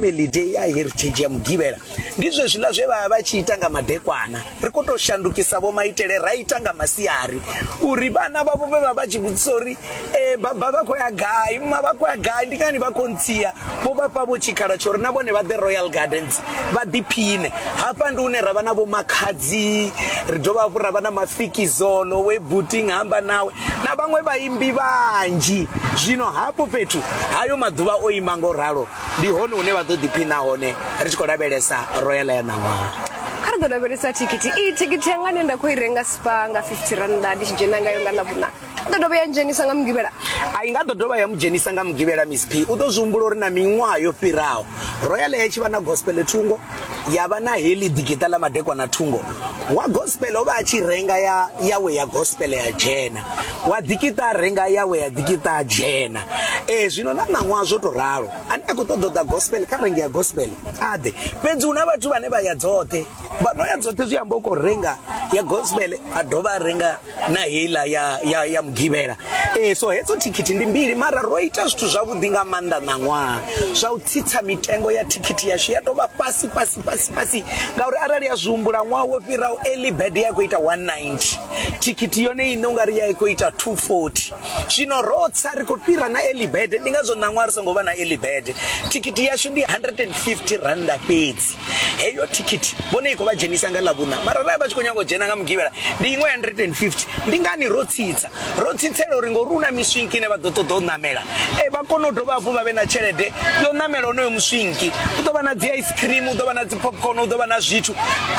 family day ya heritage ya mugivhela ndi zwezwiḽa zwe vha vha tshi ita nga madekwana ri khou tou shandukisa vho maitele ra ita nga masiari uri vhana vhavho vhe vha vha tshi vhudzisa uri e baba vha khou ya gai ma vha khou ya gai ndi ngani vha khou ntsia vho vha fha vho tshikhala tsho uri na vhone vha ḓe royal gardens vha ḓiphine hafha ndi hune ra vha na vho makhadzi ri dovha hafhu ra vha na mafikizolo we buting hamba nawe na vhaṅwe vhaimbi vhanzhi zwino hafho fhethu hayo maḓuvha o ima ngo ralo ndi hone hune vha ḓo ḓiphina hone ri tshi khou lavhelesa royal ya ṋaṅwaha kha ri ḓo lavhelesa thikhithi iyi thikhithi yanga ne nda khou i renga spa nga 50 rannda ndi tshi dzhena ngayo nga ḽavhuna i ḓo dovha ya dzhenisa nga mugivhela a i nga ḓo dovha ya mu dzhenisa nga mugivhela miss p u ḓo zwi humbula uri na miṅwaha yo fhiraho royal ya tshi vha na gospel thungo ya vha na heḽi ḓikiṱa ḽa madekwa na thungo wa gospel o vha a tshi renga ya yawe ya gospel ya dzhena wa ḓikiṱa a renga yawe ya ḓikiṱa a dzhena ee zwino na ṋaṅwaha zwo tou ralo ane a khou ṱoḓa u ḓa gospel kha renge ya gospel a ḓe fhedzi hu na vhathu vhane vha ya dzoṱhe vha no ya dzoṱhe zwi amba u khou renga ya gospel a dovha a renga na heiḽa ya, ya, ya mugivhela e, so hedzo thikhithi ndi mbili mara ro ita zwithu zwavhuḓi nga maanḓa ṋaṅwaha zwa u tsitsa mitengo ya thikhithi yashu ya tovha fhasi fhasi fhasi fhasi ngauri arali ya zwi humbula ṅwaha wo fhiraho early bed ya khou ita 190 thikhithi yone ine ungari ya i khou ita 240 zwino ro tsa ri khou fhira na early bed ndi ngazwo ṋaṅwaha ri songo vha na early bed thikhithi yashu ndi 150 randa fhedzi heyo thikhithi vhone i khou vha dzhenisa nga ḽavhuna mara rali vha tshi khou nyanga u dzhena nga mugivhela ndi iṅwe 150 ndi ngani ro tsitsa ro tsitsela uri ngori u na miswinki ine vha ḓo ṱoḓa u ṋamela e vha kone u dovha hafhu vha vhe na tshelede yo ṋamela onoyo muswinki u ḓo vha na dzi ice cream u ḓo vha na dzi popcorn u ḓo vha na zwithu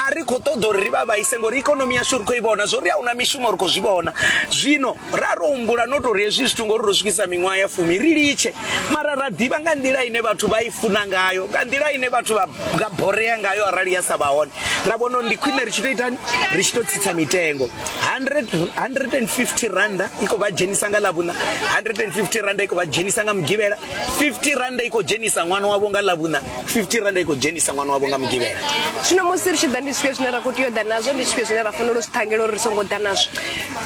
a ri khou ṱoḓa uri ri vha vhaise ngori ikonomi yashu ri khou i vhona zwo ri a huna mishumo ri khou zwi vhona zwino ra ro humbula no tori hezwi zwithu ngori ro swikisa miṅwaha ya fumi ri litshe mara ra ḓivha nga nḓila ine vhathu vha i funa ngayo nga nḓila ine vhathu vha nga borea ngayo arali ya sa vha hone ra vhona uri ndi khwine ri tshi to itani ri tshi to tsitsa mitengo 150 randa i khou vha dzhenisa nga ḽavhuna 150 randa i khou vha dzhenisa nga mugivhela 50 randa i khou dzhenisa ṅwana wavho nga ḽavhuna 50 randa i khou dzhenisa ṅwana wavho nga mugivhela zwino musi ri tshi ḓa ndi zwifhio zwine ra khou tea u ḓa nazwo ndi zwifhio zwine ra fanela u zwi ṱhangela uri ri songo ḓa nazwo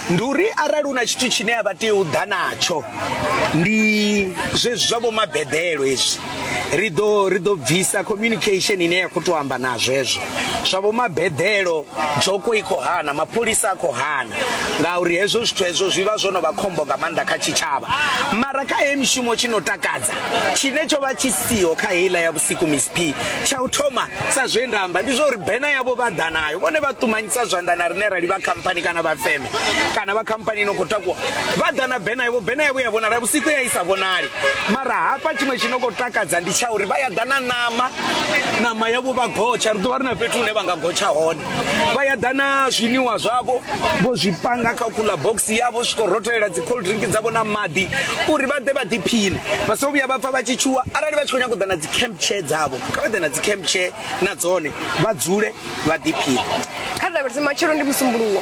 ndi uri arali hu na tshithu tshine a vha tea u ḓa natsho ndi zwezwi zwa vho mabedelo hezwi ri ḓo ri ḓo bvisa communication ine ya khou tou amba na zwezwo zwa vho mabedelo dzhoko i khou hana mapholisa a khou hana ngauri hezwo zwithu hezwo zwi vha zwo no vha khombo nga maanḓa kha tshitshavha mara kha he mishumo tshi no takadza tshine tsho vha tshi siho kha heiḽa ya siku miss p tsha u thoma sa zwe nda amba ndi zwa uri bena yavho vha ḓa nayo vhone vha ṱumanyisa zwanḓa na rine rali vha khamphani kana vha feme kana vha khamphani ino khou takuwa vha ḓa na bena yavho bena yavho ya vhonala vhusiku ya i sa vhonali mara hafha tshiṅwe tshi no khou takadza ndi tsha uri vha ya ḓa na ṋama ṋama yavho vha gotsha ri ḓo vha ri na fhethu hune vha nga gotsha hone vha ya ḓa na zwiniwa zwavho vho zwi panga kha kula box yavho swiko rothelela dzi cold drink dzavho na maḓi uri vha ḓe vha ḓiphine vha so vhuya vha pfa vha tshi tshuwa arali vha tshi khou nyanga u ḓa na dzi camp chair dzavho kha vha ḓe na dzi camp chair na dzone vha dzule vha ḓiphine kha lavhelese matshelo ndi musumbuluwo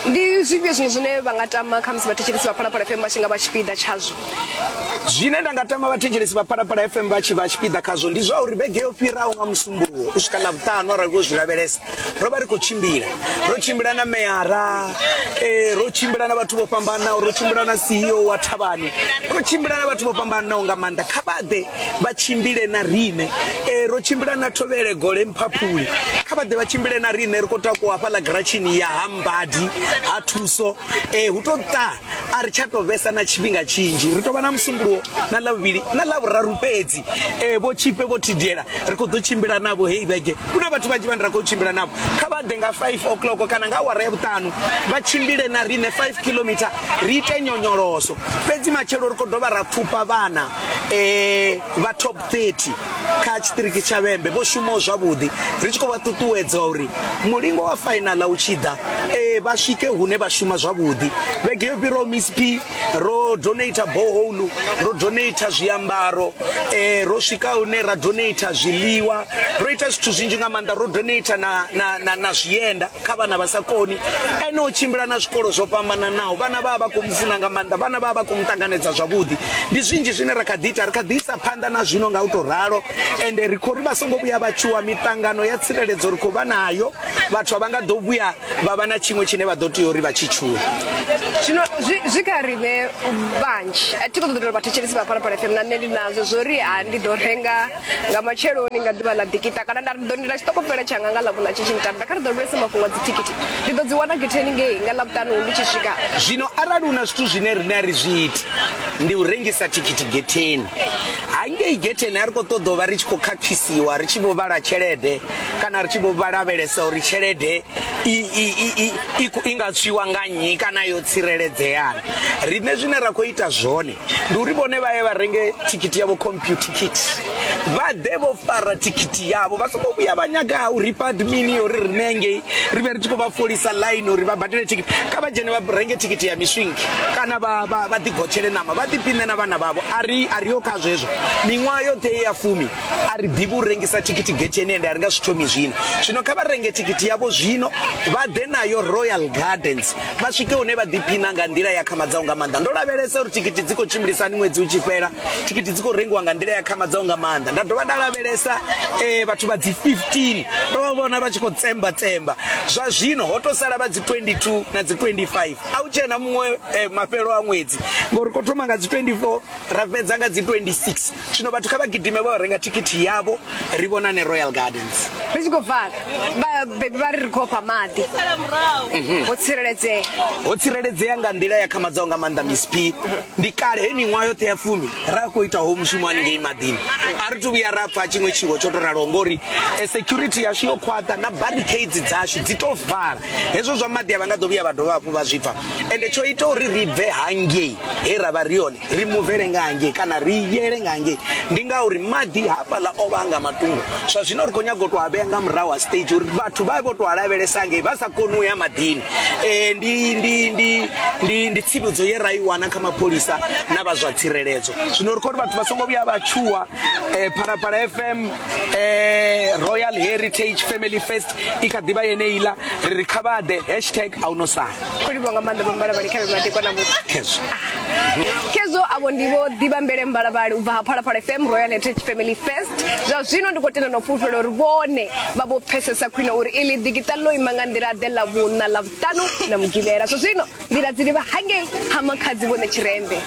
ndi zwifhio zwiṅwe zwine vha nga tama kha musi vhathetshelesi vha phalaphala fm vha tshi nga vha tshipiḓa tshazwo Zwine nda nga tama vhathetshelesi vha Phalaphala FM vha tshi vha tshipiḓa khazwo ndi zwa uri vhege yo fhiraho nga musumbuwo u swika ḽavhuṱanu arali vho zwi lavhelesa ro vha ri khou tshimbila ro tshimbila na meyara eh, ro tshimbila na vhathu vho fhambanaho ro tshimbila na CEO wa thavhani ro tshimbila na vhathu vho fhambanaho nga maanḓa kha vha ḓe vha tshimbile na riṋe eh, ro tshimbila na thovhele gole mphaphuli kha vha ḓe vha tshimbile na riṋe ri khou takuwa hafhaḽa giratshini ya ha mbadi ha thuso eh, hu tou ṱa a ri tsha tou vhesa na tshifhinga tshinzhi ri tou vha na musumbulowo na ḽavhuvhili na ḽavhuraru fhedzi um vho tshipe vho thidiela ri khou ḓo tshimbila navho heyi vhege ku na vhathu vhanzhi vhane ra khou tshimbila navho kha vha ḓe nga 5 o'clock kana nga awara ya vhuṱanu vha tshimbile na riṋe 5 kilometer ri ite nyonyoloso fhedzi matshelo ri khou dovha ra pfufha vhana um vha top 30 kha tshiṱiriki tsha vhembe vho shumaho zwavhuḓi ri tshi khou vha ṱuṱuwedza uri mulingo wa fainaḽa u tshi ḓa e vha swike hune vha shuma zwavhuḓi vhege yo fhiraho misp ro donata boholu ro donata zwiambaro um ro swika hune ra donata zwiḽiwa ro ita zwithu zwinzhi nga maanḓa ro donata na, na, na, na zwienda kha vhana vha sa koni ene o tshimbila na zwikolo zwo fhambananaho vhana vha vha vha khou mu funa nga maanḓa vhana vha vha vha khou mu ṱanganedza zwavhuḓi ndi zwinzhi zwine ra kha ḓi ita ri kha ḓi isa phanḓa na zwino nga u tou ralo ende ri khou ri vha songo vhuya vha tshuwa miṱangano ya tsireledzo ri khou vha nayo vhathu a vha nga ḓo vhuya vha vha na tshiṅwe tshine vha ḓo tea uri vha tshi tshuwe zwino zwi kha riṋe vhanzhi a thi khou ṱoḓa uri vhathetshelisi vha phalaphala fm na nṋe ndi nazwo zwo ri ha ndi ḓo renga nga matsheloni nga ḓuvha ḽa dikita kana nda ri ḓo ndila tshiṱokofela tshanga nga ḽavhuna tshi tshi nṱanda kha ri ḓo lulesa mafhungo a dzithikhithi ndi ḓo dzi wana getheni ngei nga ḽavhutanu ndi tshi swika zwino arali hu na zwithu zwine rine a ri zwi iti ndi u rengisa thikhithi getheni hangei getheni a ri khou ṱoḓa u vha ri tshi khou khakhisiwa ri tshi vho vhala tshelede kana ri tshi vho vhalavhelesa uri tshelede i nga tswiwa nga nnyi kana yo tsireledzeana riṋe zwine ra khou ita zwone ndi uri vhone vha ye vha renge thikhithi yavho computer kit vha ḓe vho fara thikhithi yavho vha songo vhuya vha nyaga u ripa admini yo ri rine ngei ri vhe ri tshi khou vha folisa line uri vha badele thikhithi kha vha dzhene vha renge thikhithi ya miswingi kana vha ḓigotshele ṋama vha ḓipine na vhana vhavho ari a ri yo kha zwezwo miṅwaha yoṱhe ye ya fumi a ri ḓivhi u rengisa thikhithi getheni ende a ri nga zwi thomi zwino zwino kha vha renge thikhithi yavho zwino vha ḓe nayo royal gardens vha swike hune vha ḓiphina nga nḓila ya khamadzaho nga maanḓa ndo lavhelesa uri thikhithi dzi khou tshimbilisani ṅwedzi u tshi fhela thikhithi dzi khou rengiwa nga nḓila ya khamadzaho nga maanḓa nda dovha nda lavhelesa um vhathu vha dzi 15 ndo vha vhona vha tshi khou tsemba tsemba zwa zwino ho to sala vha dzi 22 na dzi 25 a u tshena muṅwe eh, mafhelo a ṅwedzi ngori ko thoma nga dzi 24 ra fhedza nga dzi 26 Zwino vhathu kha vha gidime vha renga thikhithi yavho ri vhonane Royal Gardens. Ri tshi khou bva vhabebi vha ri ri khou fha maḓi mhm. ho tsireledzea ho tsireledzea nga nḓila ya khamadzaho nga maanḓa Miss P ndi kale he miṅwaha yoṱhe ya fumi ra khou ita ho mushumo haningei maḓini a ri thu vhuya ra pfa tshiṅwe tshiwo tsho to raloho ngori e security yashu yo khwaṱha na barricades dzashu dzi to vala hezwo zwa maḓi a vha nga ḓo vhuya vha dovha hafhu vha zwi pfa ende tsho ita uri ri bve hangei he ra vha ri hone ri muvele nga hangei kana ri yele nga hangei ndi ngauri maḓi hafhaḽa o vha nga matungo zwa zwino ri khou nyaga u tou a vhea nga murahu ha stage uri vhathu vha vho tou a lavhelesa hangei vha sa koni u ya maḓini um ndi ndi ndi ndi ndi tsivhudzo ye ra i wana kha mapholisa na vha zwa tsireledzo zwino ri khou ri vhathu vha songo vhuya vha tshuwa um phalaphala fm um royal heritage family fest i kha ḓivha yeneiḽa ri ri kha vha ḓe hashtag a u no sala khou livha nga maanḓa vhambala vhali kha vhe maḓi kwana muthu khezwo khezwo avho ndi vho ḓivha mbele mbalabali u bva ha phalaphala fm royal heritage family first zwa zwino ndi khou tenda no fhulufhela uri vhone vha vho pfesesa khwine uri ili digital ḽo ima nga nḓila ḓe ḽa vhuṋa ḽa vhuṱanu na mugivhela zwa zwino nḓila dzi livha hangei ha makhadzi vhone tshirembe